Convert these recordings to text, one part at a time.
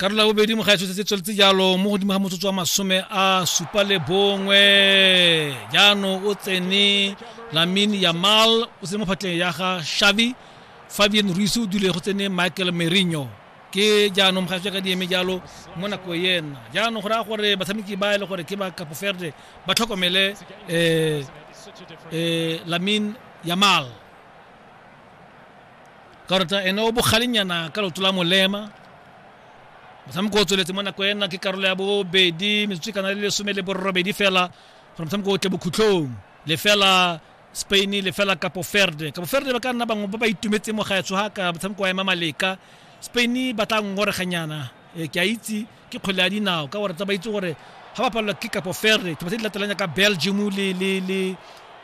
karolo ya bobedi mogaetsho se se tsweletse jalo mo godimo ga motsotso wa masome a supa le bongwe jaanong o tsene lamin yamal o tsene mo phatleng ya ga shavi fabian ruise o dule go tsene michael merino ke jaanong mogaetsho ka di eme jalo mo nako ena jaanong go raya gore batshameki ba e le gore ke ba kapoferde ba tlhokomele um um lamin yamal karata ene o bogalenyana ka loto la molema motshameko o tsweletse mo nako ena ke karolo ya bobedi metsotso e kana le lesome le borobedi fela gore motshameko o tle bokhutlhong lefela spain lefela kapo ferde kapo ferde ba ka nna bangwe ba ba itumetse mo gaetsho ga ka motshameko wa ema maleka spain ba tla ngoreganyana e, ke a itse ke kgwele ya dinao ka gore tsa ba itse gore ga ba palelwa ke kapo ferre tse di latelanya ka belgium le le le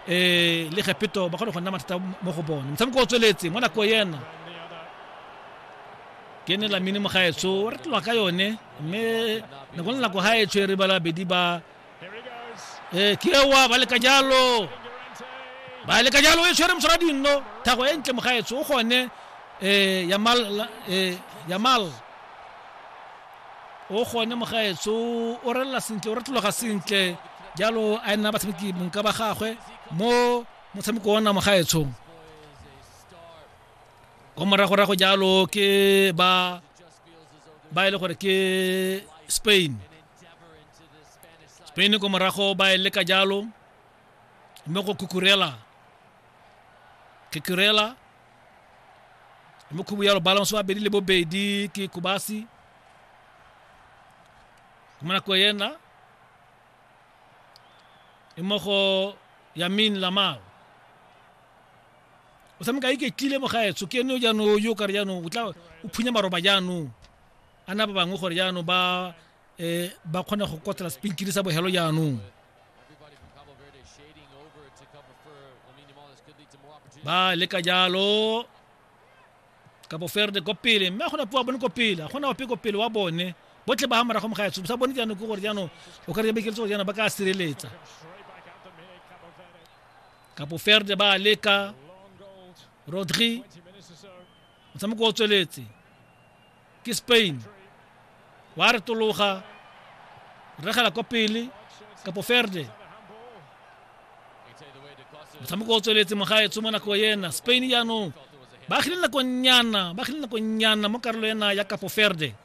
eh le gepeto ba kgone go nna mathata mo go bone motshameko o tsweletse mo nako yena ke ne la mine mo gaetsho o retelwa ka yone mme nako le nako gaetsho e re bala bedi ba ee ke ewa ba leka jalo ba leka jalo e tshwere mosara dinno thago e ntle mogaetso o gone um yamal um yamal o gone mogaetso o relela sentle o retologa sentle jalo a nna batshameki bonka ba gagwe mo motshameko ona mogaetsong ko moragorago jalo ke ba ba e le gore ke spain spain ko morago ba e leka jalo mme go kukurela kukurela mme khubu jalo balance wa bedi le bobedi ke kubasi mo nako ena e mo go yamin lamao o tshameka iketlile mo gaetsho ke ene jaanong yo kare jaanong o tla o phunya maroba jaanong a na ba bangwe gore jaanong ba um ba kgone go kotla sepinkiri sa bogelo jaanong ba leka jalo kapo ferde ko pele mme a gona po wa bone ko pele a gona ope ko pele wa bone botlhe ba ga morago moga etso sa bone jaanong ke gore jaanong o ka re bekeletse gore jaanong ba ka sireletsa kapo ferde ba leka rodri motshameko o tsweletse ke spain wa retologa regela kwa pele kapo ferde motshameko o tsweletse mogaetsho mo nako ena spain jaanong ba agile nakonyana ba agile nakonyana mo karolo ena ya kapo ferde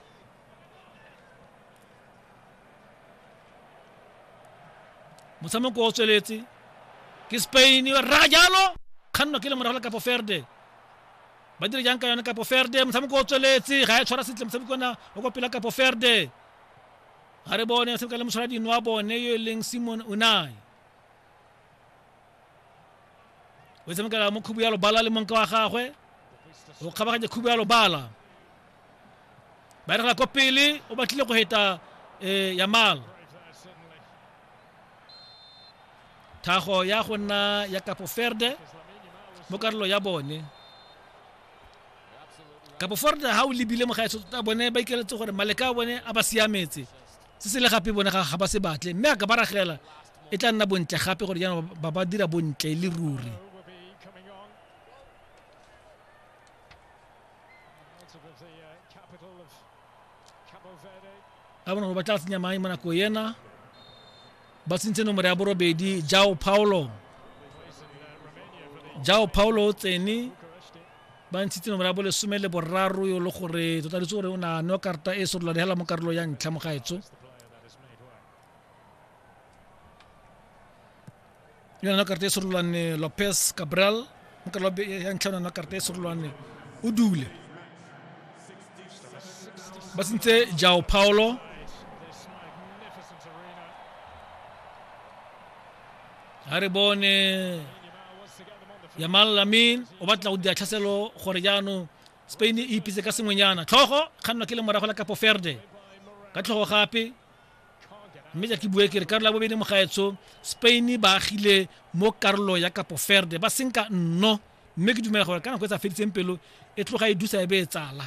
motshameko o tsweletse ke spain ra jalo kgannwa ke le morago la kapo ferde ba dire jang ka yone kapo ferde motshameko o tsweletse ga ya tshwara sentle motshameko ona o kopela kapo ferde ga re bone motshameko le motshwara dino wa bone yo e leng simon unai o tshamekela mo khubu ya lobala le monka wa gagwe o kgabaganya khubu ya lobala ba regela ko pele o batlile go heta um yamala thago ya go nna ya kapo ferde mo karolo ya bone kapo forde ha o lebile mogaetso tota bone ba ikeletse gore maleka a bone a ba siametse se se le gape bone ga ba se batle mme a ka ba ragela e tla nna bontle gape gore jaanong ba ba dira bontle le ruri a bona gore ba tla tsenya mae mo nako ena ba tsentse nomoro ya borobedi jao paulo jao paulo o tsene ba ntshitse nomoro ya bolesome le boraro yo le gore totalitse gore o na no karata e sorola dihela mo karolo ya ntlha mo gaetso yona nwa karata e serolwane lopez cabral nka lobe ya ntlha yona nwa karata e serolwane o dule ba sentse jao paolo ga re bone yamal lamin o batla go dira tlhaselo gore jaanong spain e ipitse ka sengwenyana tlhogo kgannwa ke le morago la kapo ferde ka tlhogo gape mme ja ke bue ke re karolo ya bobedi mogaetsho spain ba agile mo karolo ya kapo ferde ba senka nno mme ke dumela gore ka nako e sa feditseng pelo e tloga e dusa e be e tsala